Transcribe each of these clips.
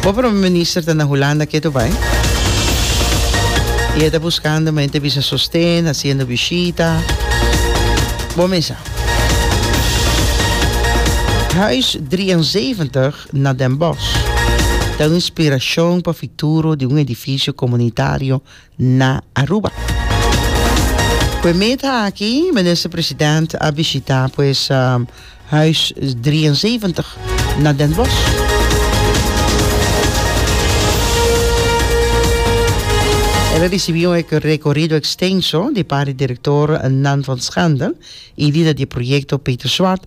Bo prome minister ta na Hulanda ketu bai y e ta buskando men te bisa sosten, hasiendo bishita. Bo mesa. Huis 73 na Den Bosch ta un inspirashon pa futuro di un edifisio komunitario na Aruba. Ku e meta aki Minister President a bishita pues Huis drieënzeventig na Den Bosch. El a risibi un rekorido ekstenso di par di direktornan van Schandel i lider di e proyekto Peter Swart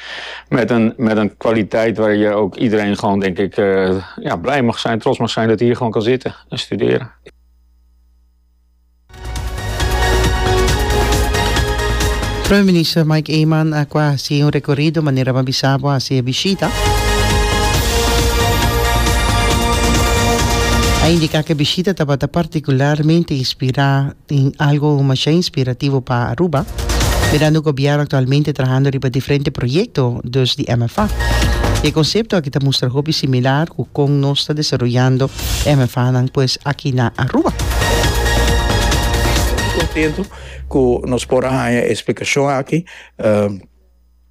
Met een, met een kwaliteit waar je ook iedereen gewoon, denk ik, eh, ja, blij mag zijn, trots mag zijn dat hij hier gewoon kan zitten en studeren. Prome Minister Mike Eman a cua haci un recorido manera a bisa bo haci e bishita. A indica cu e bishita tabata particularmente inspira Tin algo masha inspirativo pa Aruba, mirando gobierno actualmente trahando riba diferente proyecto dus di MFA. Y e concepto aki ta mustra hopi similar cu con nos ta desaroyando MFAnan pues aki na Aruba. Contento cu nos por a haña e explicacion aki.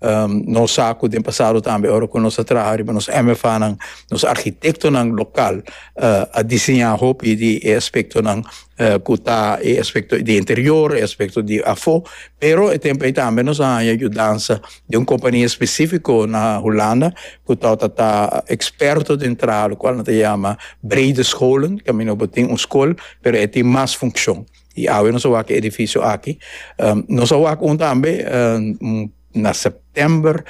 Nos sa cu den pasado tambe ora cu nos a traha riba nos MFAnan, nos architectonan local a diseña hopi di e aspectonan cu ta e aspecto di interior, e aspecto di afo, pero e tempo ey tambe nos a haya yudansa di un compania especifico na Hulanda cu torta ta experto den traha locual nan ta yama Breede Scholen, camin'o bo tin un school pero e tin mas funcion. Y awe nos a wak e edificio aki. Nos a wak un tambe na september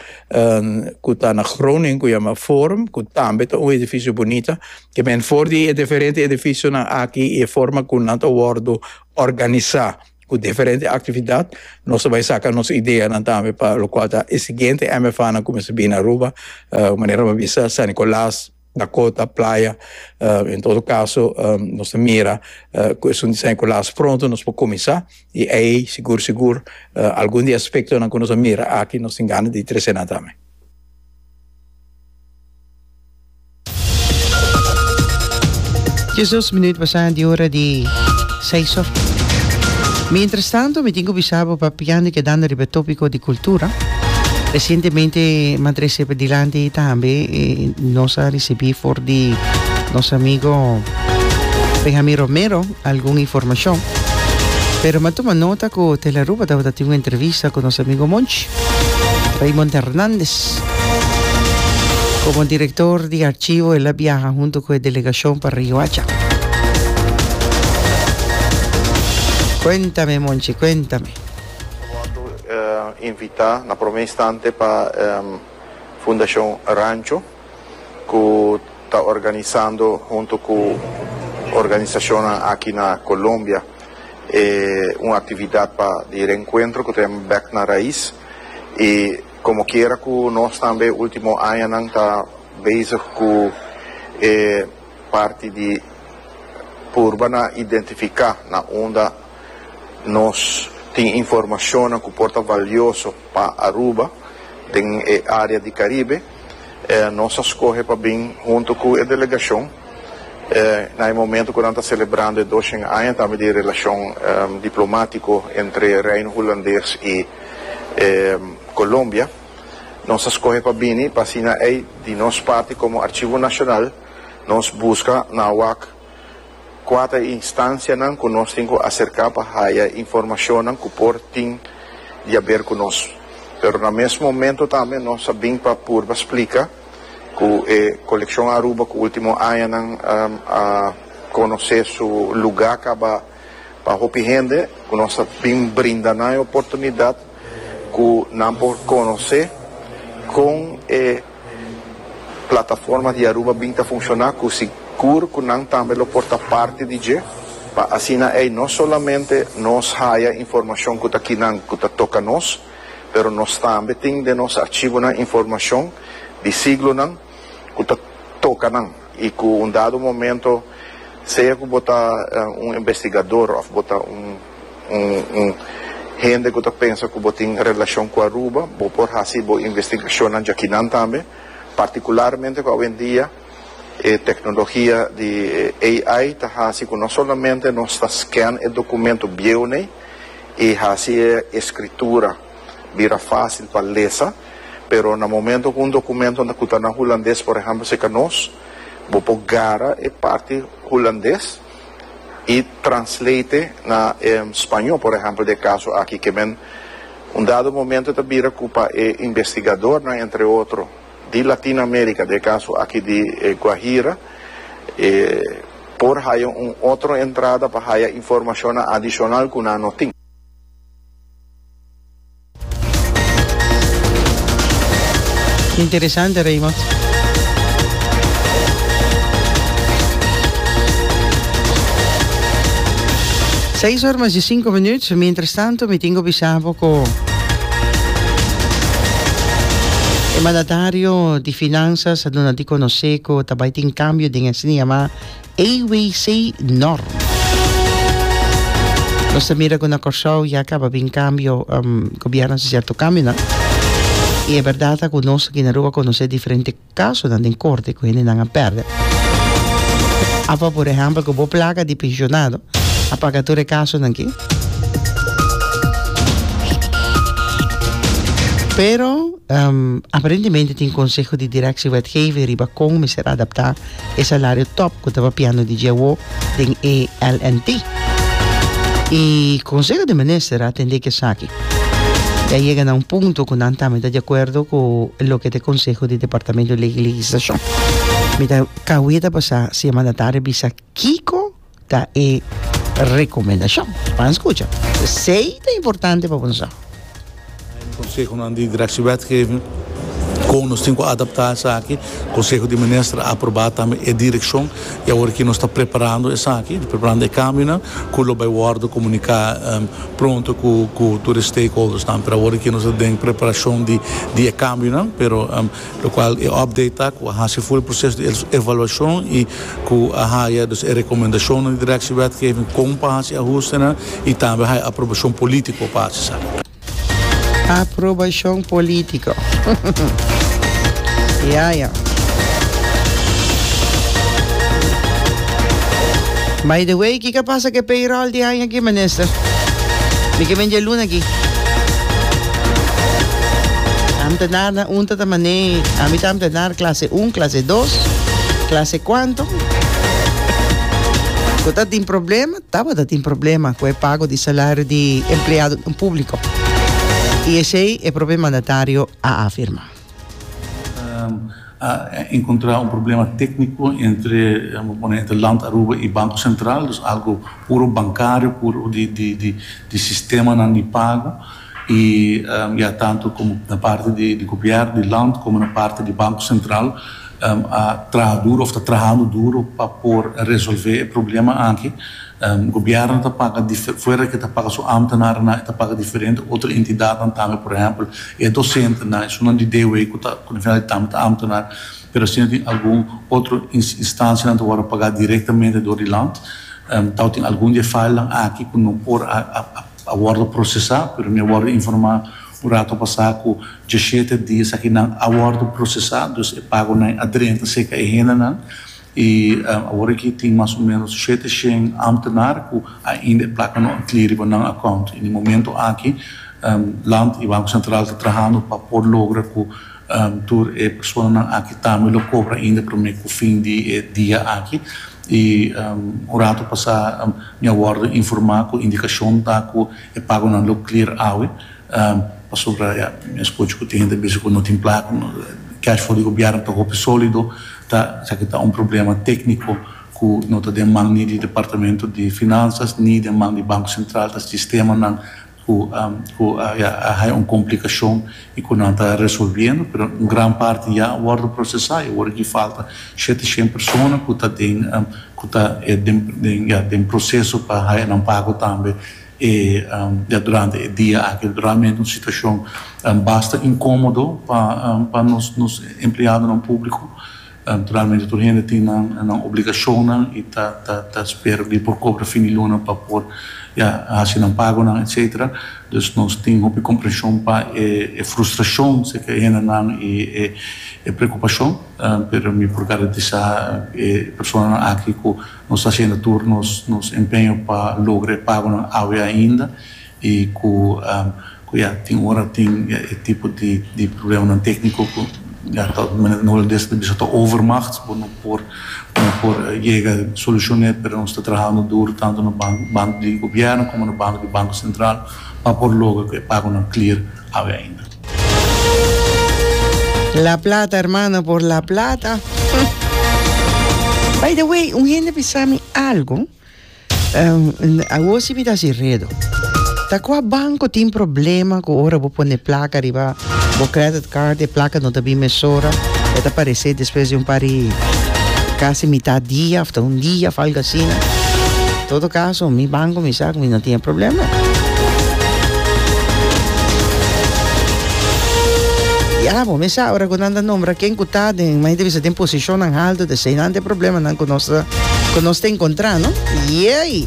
cu ta na Groningen cu yama Forum cu tambe ta un edificio bunita. Ke men for di e diferente edificionan aki y e forma cu nan ta wordo organisa cu diferente actividad nos a bay saca nos ideanan tambe pa locual ta e siguiente MFAnan cu mester bini Aruba manera bo a bisa San Nicolas, Na kota, playa, en todo kaso nos ta mira ku esun diseño ku las pronto nos por kuminsá i ei sigur sigur algun di e aspektonan ku nos a mira aki nos tin gana di trese nan tambe. Dje dos minüt pasá di ora di. Seis or. Mientras tanto mi tin cu bisa bo papiandi kedando riba e topico di cultura. Recientemente ma trece dilanti tambe nos a ricibi for di nos amigo Benjamin Romero algun informacion. Pero ma tuma nota cu Telaruba tabata tin un entrevista cu nos amigo Monchi Raymond Hernandez. Komo direktor di Archivo el a biaha huntu ku e delegashon pa Riohacha. Kuéntame Monchi, kuéntame. Wòrdu invitá na promé instante pa Fundashon Rancho ku ta organisando huntu ku organisashonnan aki na Colombia un aktividat pa di renkuentro ku ta yama Bèk na Rais i Como quiera cu nos tambe e ultimo añanan ta bezig cu e parti di purba na identifica na unda nos tin informacionnan cu por ta valioso pa Aruba den e area di Caribe, nos a scoge pa bin hunto cu e delegacion na e momento cu nan ta celebrando e doshen aña tambe di e relacion diplomatico entre Reino Hulandes y. e Colombia, nos a scohe pa bini pa asina ey di nos parti como Archivo Nacional nos busca na wak cua ta e instancianan cu nos tin cu acerca pa haya informacionnan cu por tin di haber cu nos. Pero na mes momento tambe nos a bin pa purba splica cu e Coleccion Aruba cu ultimo añanan a conoce su lugar caba Pa hopi hende ku nos a bin brinda nan e oportunidat ku nan por konosé kon e plataforma di Aruba bin ta funshoná ku sigur ku nan tambe lo por ta parti di dje pa asina ei no solamente nos haya informashon ku ta kinan ku ta toka nos pero nos tambe tin den nos archivonan informashon di siglonan ku ta toka nan i ku un dado momento sea ku bo ta un investigador òf bo ta un un hende ku ta pensa ku bo tin relashon ku Aruba bo por hasi bo investigashonnan djakinan tambe partikularmente ku awendia e teknologia di AI ta hasi ku no solamente nos ta scan e dokumentu bieunen i hasi e escritura. bira fásil pa lesa, pero na momento ku un dokumento ku ta na hulandes, por ehèmpel si ka nos, bo por gara e parti hulandes i translate na e spañó, por ehèmpel den e kaso aki ke men un dado momento ta bira ku pa e investigadornan entre otro di Latin Amérika, den e kaso aki di e Guajira, e por haya un otro entrada pa haya informashonnan adishonal ku nan no tin. Interesante Raymond. Seis or mas di sinku minuut. Mientras tanto mi tingo bisa bo ku e mandatario di finanzas a duna di konosé ku ta bai tin kambio den e sniama AWC Norm. Nos ta mira cu na Corsou ya caba bin cambio, um, gobierno haci cierto cambionan. Y e berdad ta cu nos aki na Aruba conoce diferente casonan den corte cu hendenan a perde. Apa, por ehempel, cu bo placa di pensionado a paga tur e casonan aki. Pero, um, aparentemente tin conseho di directie wetgeving riba con mester adapta. e salario top cu ta papiando di dje awo den e LNT. Y Conseho di Minister a atende cu esaki. Y a yega na un punto cu nan tambe ta di acuerdo cu loke ta e conseho di Departamento Ley y Legislacion. Mi ta cawe ta pasa semana tarde bisa kico. Ta e rekomendashon pa nan skucha. Esei ta importante pa boso. Na e konsehonan di direkshewetgeving kon nos tin ku adaptá esaki. Konseho di Minister a aprobá tambe e direkshon i awor aki nos ta preparando esaki, preparando e kambionan ku lo bai wòrdu komuniká pronto ku tur e stakeholdersnan. Pero awor aki nos ta den preparashon di e kambionan, pero. Lokual e update ta ku a hasi full proseso di evaluashon i ku a haya dus e rekomendashonnan di Direkshi Wetgeving kon pa hasi ahustenan i tambe haya aprobashon polítiko pa hasi sa. Aprobashon polítiko. Ya, ya. By the way, kiko a pasa ku e payroll di aña. Aki minister. Mi ke men djelun aki. Am ta nar na un tata mané. Ami tam ta nar klase un, klase dos, klase kuanto. Ku ta tin problema, tabata tin problema ku e pago di salario di empleadonan públiko. I esei e propio mandatario a afirmá. A encontra un problema tecnico entre, bo pone entre Land Aruba y Banco Central, dus algo puro bancario, puro di sistemanan di pago, y ya tanto como na parti di Gobierno, di Land, como na parti di Banco Central a traha duro of ta trahando duro pa por resolve e problema aki. Gobièrnu ta paga dife, fuera ke ta paga su ámtenarenan, e ta paga diferente otro entidatnan tambe. Por ehèmpel, e dosentenan, esunnan di DW ku ta, ku na finalmente tambe ta ámtenar, pero asina tin algun otro instansianan ta wòrdu pagá direktamente dor di land. Tau tin algun di e failnan aki ku no por a wòrdu prosesá, pero mi a wòrdu informá un ratu pasá ku diashete di esakinan a wòrdu prosesá, dus e pagonan a drenta serka e hendenan. I awor aki tin mas o menos shete shen amtenar ku ainda e plaka no a kli riba nan akount. I den e momento aki Land i Banko Sentral ta trahando pa por logra ku tur e personanan aki tambe lo kobra ainda promé ku fin di e dia aki. I un ratu pasá mi a wòrdu informá ku indikashon ta ku e pagonan lo klir awe. Pasobra ya mi a scucha cu tin hende a bisa cu no tin placa, no, cash flow di gobierno ta hopi solido, ta esaki ta un problema tecnico cu no ta den man ni di departamento di finanzas ni den man di Banco Central, ta sistemanan cu cu a ya a haya un complicacion y cu nan ta resolviendo, pero un gran parti ya a wordo procesa y awor aki falta shete shen persona cu ta den cu ta den den proceso pa haya nan pago tambe. E ya durante e dia aki realmente un situacion basta incomodo pa nos empleadonan publico, realmente tur hende tin nan obligacionnan y ta spera di por cobra fin di luna pa por ya haci nan pagonan etcetera, dus nos tin hopi comprension pa e frustracion si ke hendenan y e preocupacion, pero mi por garantisa e personanan aki cu. Nos ta hasiendo tur nos empeño pa logra e pagonan awe ainda y cu ya tin ora tin e tipo di problemanan tecnico cu ya ta manera no lo dice ta bisa ta overmacht, bo no por yega solucion n'e, pero nos ta trahando duro tanto na bando di gobierno como na bando di Banco Central pa por logra cu e pagonan clear awe ainda. La plata hermano por la plata. By the way, un hende bisa mi algo. Um, a wosi mi da si redo. Ta qua banco tin problema cu ora bo pone placa riba bo credit card, e placa no ta bin mesora. E ta parece después de un pari casi mitad dia, after un dia, algo asina. Todo caso, mi ban cu mi sa cu mi no tin e problema. Ya, bo mi sa ora cu nan ta nombra ken cu ta den, mi ta bisa den posicionnan alto, ta eseinan ta e problemanan cu nos ta, cu nos ta encontra, no? Yey!